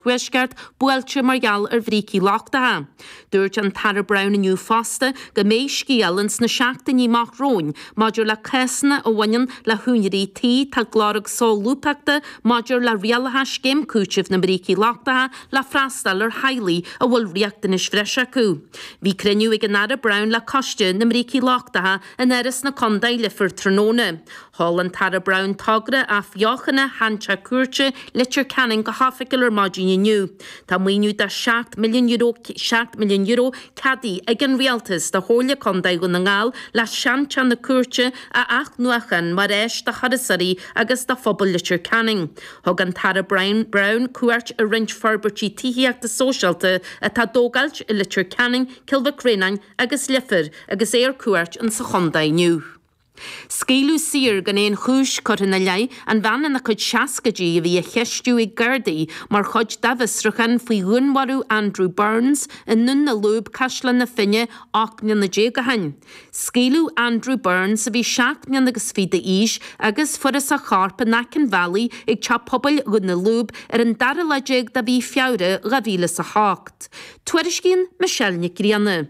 Thuaisceart buailte mar gheall ar bhrící lochtacha. Dúirt an tAire Browne inniu fosta go mbeidh scéal ann sna seachtainí amach romhainn maidir le cásanna a bhaineann le húinéirí tí atá ag lorg solúbthachta maidir le rialacha scéim cúitimh na mbrící lochtacha le freastal ar theaghlaigh a bhfuil riachtanais bhreise acu. Bhí cruinniú ag an Aire Browne le Coiste na mBrící Lochtacha in Áras na Contae, Leifear tráthnóna. Sheol an tAire Browne togra athbheochana Sheanteach Cúirte Leitir Ceanainn go hoifigiúil ar maidin inniu. Tá maoiniú de €7 milliún, seacht milliún euro, ceadaithe ag an Rialtas do Chomhairle Contae Dhún na nGall le seanteach na cúirte a athnuachan mar áis do thurasóirí agus do phobal Leitir Ceanainn. Thug an tAire Browne cuairt ar roinnt forbairtí tithíochta sóisialta atá á dtógáilt i Leitir Ceanainn, Cill Mhic Réanáin agus Leifear agus é ar cuairt insa chontae inniu. Scaoileadh saor, gan aon chúis curtha ina leith, an bhean ina cuid seascaidí a bhí á cheistiú ag Gardaí mar chuid dá bhfiosruchán faoi dhúnmharú Andrew Burns i nDún na Lúb, Caisleán na Finne, 18 mbliana ó shin. Scaoileadh Andrew Burns, a bhí seacht mbliana agus fiche d'aois, agus fuarthas a chorp in aice an bhealaigh ag Teach Pobail Dhún na Lúb ar an dara lá déag de mhí Feabhra 2008. Tuairiscíonn Michelle Nic Grianna.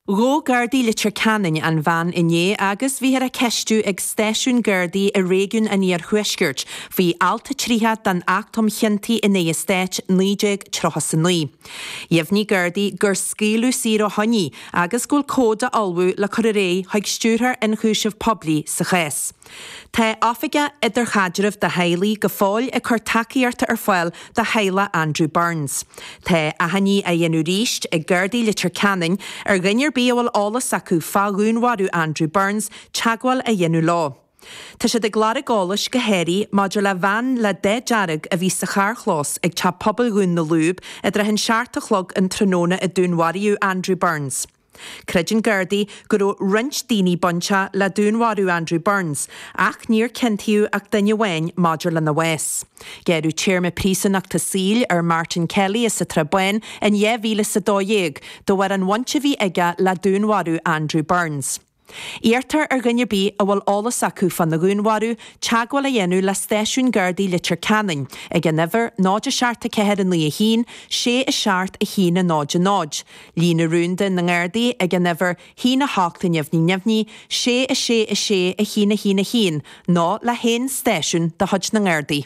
Ghabh Gardaí Leitir Ceanainn an bhean inné agus bhíthear á ceistiú ag stáisiún Gardaí i réigiún an Iarthuaiscirt faoi Alt 30 den Acht um Chiontaí in aghaidh an Stáit 1939. Dheimhnigh Gardaí gur scaoileadh saor ó shoin í agus go bhfuil comhad á ullmhú le cur ar aghaidh chuig Stiúrthóir Ionchúiseamh Poiblí sa chás. Tá Oifigeach Idirchaidrimh do Theaghlaigh go fóill ag cur tacaíochta ar fáil do theaghlach Andrew Burns. Tá achainí á dhéanamh arís ag Gardaí Leitir Ceanainn ar dhuine ar bith a bhfuil eolas acu fá dhúnmharú Andrew Burns teagmháil a dhéanamh leo. Tá siad ag lorg eolais go háirithe maidir le veain le dath dearg a bhí sa charrchlós ag Teach Pobail Dhún na Lúb i dtrátha an seacht a chlog an tráthnóna a dúnmharaíodh Andrew Burns. Creideann Gardaí go raibh roinnt daoine bainte le dúnmharú Andrew Burns, ach níor ciontaíodh ach duine amháin maidir lena bhás. Gearradh téarma príosúnachta saoil ar Martin Kelly as an tSrath Bán in 2012 de bharr an bhaint a bhí aige le dúnmharú Andrew Burns. Iarrtar ar dhuine ar bith a bhfuil eolas acu fána dhúnmharú teagmháil a dhéanamh le Stáisiún Gardaí Leitir Ceanainn ag an uimhir 0 7491 67100, Líne Rúnda na nGardaí ag an uimhir 1 800 666111 nó le haon stáisiún de chuid na nGardaí.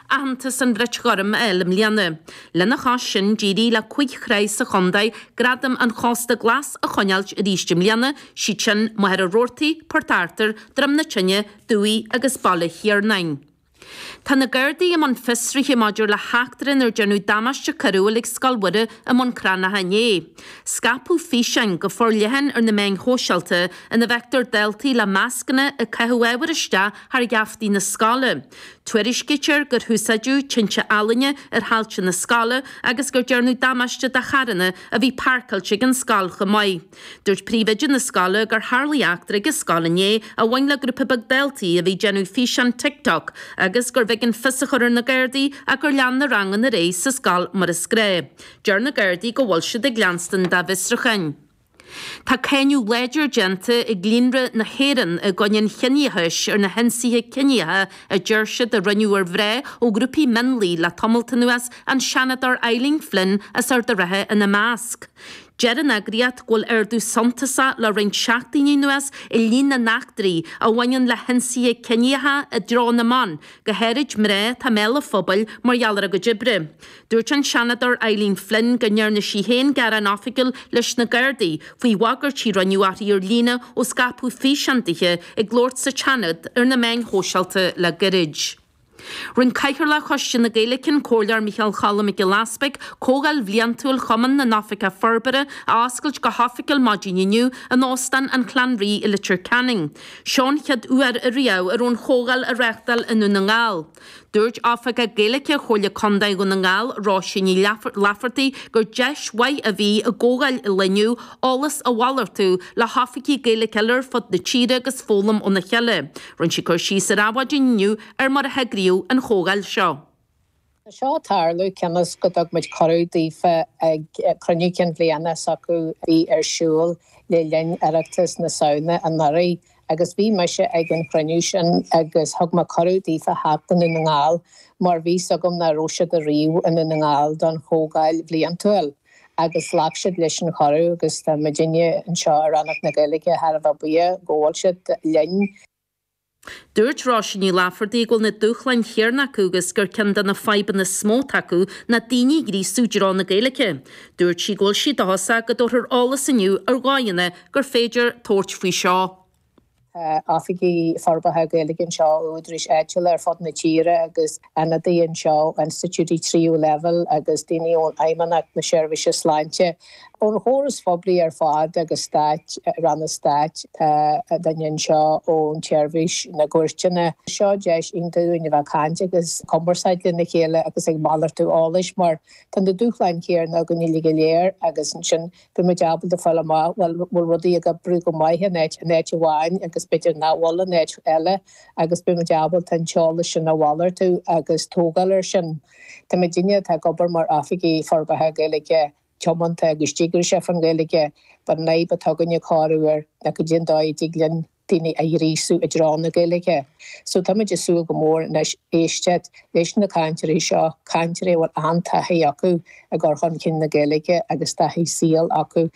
aitheantas an Bhrait Ghoirm a fháil i mbliana. Lena chois sin, d'éirigh le cúig thrá sa chontae gradam an Chósta Glas a choinneáilt arís i mbliana, siad sin, Machaire Rabhartaigh, Port Arthúir, Droim na Tine, Dumhaigh agus Baile Thiarnáin. Tá na Gardaí i mbun fiosraithe maidir le heachtra inar déarnadh damáiste coiriúil ag Scoil Mhuire i mBun Cranncha inné. Scaipeadh físeáin go forleathan ar na meáin shóisialta ina bhfeictear daltaí le mascanna ag caitheamh ábhar isteach thar gheaftaí na scoile. Tuairiscítear gur húsáideadh tinte ealaíne ar thailte na scoile agus gur déarnadh damáiste do charranna a bhí pairceáilte ag an scoil chomh maith. Dúirt príomhoide na scoile gur tharla eachtra ag a scoil inné a bhain le grúpa beag daltaí a bhí ag déanamh físeán TikTok agus gurbh éigean fios a chur ar na Gardaí ach gur lean na ranganna ar aghaidh sa scoil mar is gnách. Deir na Gardaí go bhfuil siad ag leanstan dá bhfiosrúcháin. Tá cáineadh láidir déanta ag Líonra na hÉireann i gcoinne an chiníochais ar na hionsaithe ciníocha a deir siad a rinneadh ar mhná ó ghrúpaí mionlaigh le tamalt anuas, an Seanadóir Eileen Flynn as Ard an Rátha ina measc. Deir an eagraíocht go bhfuil ardú suntasach le roinnt seachtainí anuas i líon na n-eachtraí a bhaineann le hionsaithe ciníocha i dtreo na mban, go háirid mná atá i mbéal an phobail mar gheall ar a gcuid oibre. Dúirt an Seanadóir Eileen Flynn go ndearna sí féin gearán oifigiúil leis na Gardaí faoi bhagairtí a rinneadh uirthi ar líne ó scaipeadh físeán dithe ag labhairt sa tSeanad ar na meáin shóisialta le gairid. Rinne Cathaoirleach Choiste na Gaeilge an Comhairleoir Micheál Cholm Mac Giolla Easbuig comhdháil bhliantúil Chumann na nOifigeach Forbartha a oscailt go hoifigiúil maidin inniu in Óstán an Chlanree i Leitir Ceanainn. Seo an chéad uair a riamh a raibh an chomhdháil á reáchtáil i nDún na nGall. Dúirt Oifigeach Gaeilge Chomhairle Contae Dhún na nGall, Róisín Ní Laifeartaigh, gur deis mhaith a bhí i gcomhdháil an lae inniu eolas a mhalartú le hoifigigh Gaeilge eile ar fud na tíre agus foghlaim óna chéile. Rinne sí cur síos ar Adhmhaidin inniu ar mar a heagraíodh an chomhdháil seo. Tá seo ag tarlú cionn is go dtug muid cuireadh daofa ag cruinniú cinn bhliana s'acu a bhí ar siúl le linn Oireachtas na Samhna anuraidh. Agus bhí mise ag an chruinniú sin agus thug mé cuireadh daofa theacht go Dún na nGall mar bhí 'fhios agam nach raibh siad ariamh i nDún na nGall don chomhdháil bhliantúil agus ghlac siad leis an chuireadh agus tá muidinne anseo i Rannóg na Gaeilge thar a bheith buíoch go bhfuil siad linn. Dúirt Róisín Ní Laifeartaigh go bhfuil na dúshláin chéarna acu agus gur ceann de na fadhbanna is mó atá acu ná daoine a ghríosú i dtreo na Gaeilge. Dúirt sí go bhfuil sí dóchasach go dtabharfar eolas inniu ar dhóigheanna gur féidir tabhairt faoi seo. Tá oifigigh forbartha Gaeilge anseo ó údaráis áitiúla ar fud na tíre agus ionadaithe anseo ó institiúidí tríú leibhéal agus daoine ó Fheidhmeannacht na Seirbhíse Sláinte, ón chóras phoiblí ar fad agus stát, ranna stáit. Tá duine anseo ón tSeirbhís na gCúirteanna. Seo deis iontach dúinn a bheith ag caint agus ag cumarsáid lena chéile agus ag malartú eolais mar tá na dúshláin chéanna againne go léir agus ansin beidh muid ábalta a fháil amach bhuel an bhfuil rudaí ag oibriú go maith in áit, in áit amháin agus b'fhéidir nach bhfuil in áit eile agus beidh muid ábalta an t-eolas sin a mhalartú agus tógáil air sin. Tá na daoine atá ag obair mar Oifigigh Forbartha Gaeilge tiomanta agus díograiseach faoin Ghaeilge, an fhadhb atá againn i gcónaí ná caidé an dóigh a dtig linn daoine a ghríosú i dtreo na Gaeilge. So táimid ag súil go mór anois éisteacht leis na cainteoirí seo, cainteoirí a bhfuil an-taithí acu i gcur chun cinn na Gaeilge agus taithí saoil acu.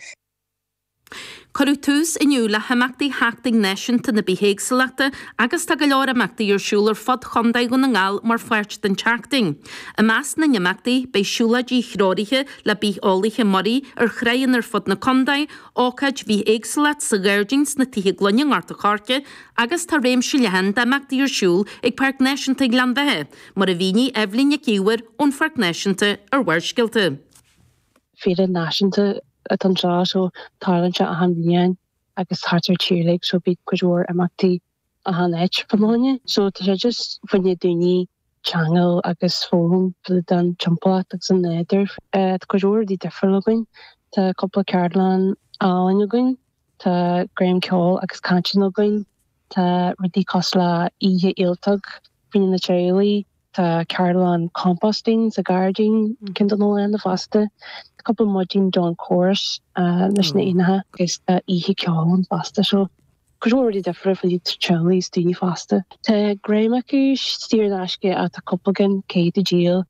Cuireadh tús inniu le himeachtaí Sheachtain Náisiúnta na Bithéagsúlachta agus tá go leor imeachtaí ar siúl ar fud Chontae Dhún na nGall mar pháirt den tseachtain. I measc na n-imeachtaí beidh siúlóidí threoraithe le bitheolaithe muirí ar thránna ar fud na contae, ócáid bhithéagsúlachta sa ghairdín sna Tithe Gloine i nGort a' Choirce agus tá réimse leathan d'imeachtaí ar siúl ag Páirc Náisiúnta Ghleann Bheatha, mar a mhínigh Eibhlín Nic Íomhair ón Pháirc Náisiúnta ar Bharrscéalta. Féile náisiúnta atá anseo so tarlaíonn sé achan bhliain agus thart an tír uilig so bíonn cuid mhór imeachtaí achan áit faoi choinne. So tá sé just faoi choinne daoine ceangal agus foghlaim fá dtaobh den timpeallacht agus an nádúr. Tá cuid mhór rudaí difriúil againn. Tá cúpla ceardlann álainn againn, tá giota ceoil agus cainteanna againn, tá rudaí cosúil le oíche ialtóg faoi choinne teaghlaigh, Tá ceardlann composting sa ghairdín ceann don wildlife fosta, cúpla maidin dawn chorus leis na éanacha agus tá oíche ceoil ann fosta. So, cuid mhór rudaí difriúla faoi choinne teaghlaigh is daoine fásta. Tá an chuid is mó acu saor in aisce ach tá cúpla ceann caithfidh tú díol.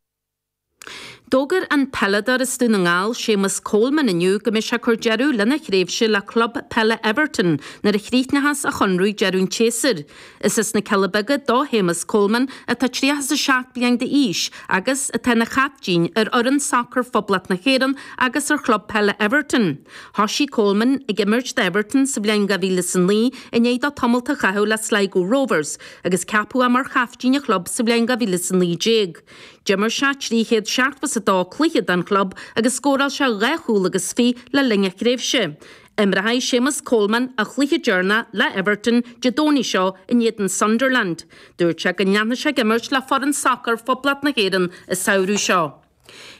D'fhógair an peileadóir as Dún na nGall, Séamus Coleman, inniu go mbeidh sé ag cur deireadh lena thréimhse le club peile Everton nuair a chríochnós a chonradh deireadh an tséasúir. Is as na Cealla Beaga do Shéamus Coleman, atá tríocha is a seacht bliain d'aois, agus atá ina chaiptín ar fhoireann sacair Phoblacht na hÉireann agus ar chlub peile Everton. Thosaigh Coleman ag imirt d'Everton sa bhliain dhá mhíle is a naoi i ndiaidh dó tamalt a chaitheamh le Sligo Rovers, agus ceapadh é mar chaiptín an chlub sa bhliain dhá mhíle is a naoi déag. D'imir sé trí chéad seachtó is a dó cluiche don chlub agus scóráil sé dhá chúl agus fiche le linn a thréimhse. Imreoidh Séamus Coleman a chluiche deireanach le Everton Dé Domhnaigh seo in éadan Sunderland. Dúirt sé go leanfaidh sé ag imirt le foireann sacair Phoblacht na hÉireann an samhradh seo.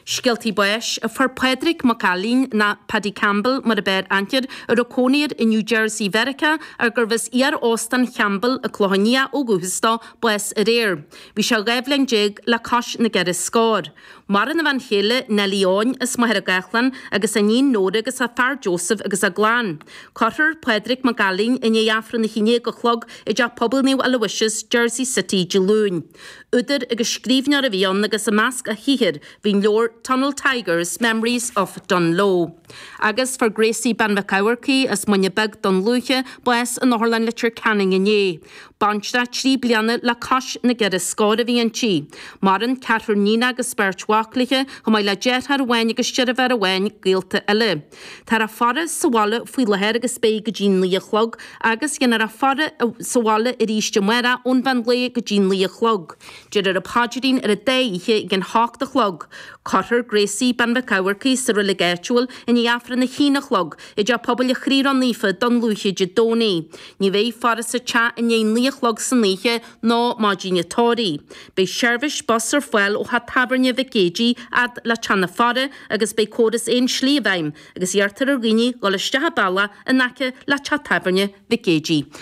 Scéaltaí Báis, Fuair Pádraig Mac Ailín, nó Paddy Campbell mar ab fhearr aithne air, a raibh cónaí air i New Jersey Mheiriceá ach gurbh as iar-Óstán Champbell An Clochán Liath ó dhúchas dó, bás aréir. Bhí sé 12 bhliain le cois na gceithre scór. Maireann a bhean chéile Neilí Eoin, as Machaire Gathlán, agus a iníon Nóra agus a fear Joseph agus a gclann. Cuirfear Pádraig Mac Ailín i ndiaidh Aifreann a hAon Déag a chlog i dTeach Pobail Naomh Aloysius, Jersey City, Dé Luain. Údar agus scríbhneoir a bhí ann agus i measc a shaothair bhí an leabhar Tunnel Tigers, Memories of Dungloe. Agus fuair Gracie Bean Mhic Eamharcaigh as Muine Bheag, Dún Lúiche, bás in Otharlann Leitir Ceanainn inné. Baintreach trí bliana le cois na gceithre scór a bhí inti. Maireann ceathrar níon agus beirt mhac léithe, chomh maith le deartháir amháin agus deirfiúr amháin, gaolta eile. Táthar á faire sa bhaile faoi láthair agus beidh go dtí naoi a chlog, agus dhéanfar a faire sa bhaile arís amárach ón mheán lae go dtí naoi a chlog. Déarfar an paidrín ar an dá oíche ag an hocht a chlog. Cuirfear Gracie, bean Mhic Eamharcaigh, sa reilig áitiúil i ndiaidh aifreann a haon a chlog i dTeach Pobail a' Chroí Ró Naofa Dún Lúiche Dé Domhnaigh. Ní bheidh faire sa teach i ndiaidh naoi a chlog san oíche, ná maidin an tórraimh. Beidh seirbhís bus ar fáil ó theach tábhairne Mhic Géidigh fhad le teach na faire agus beidh córas aon slí i bhfeidhm, agus iarrtar ar dhaoine dul isteach an bealach in aice le teach tábhairne Mhic Géidigh.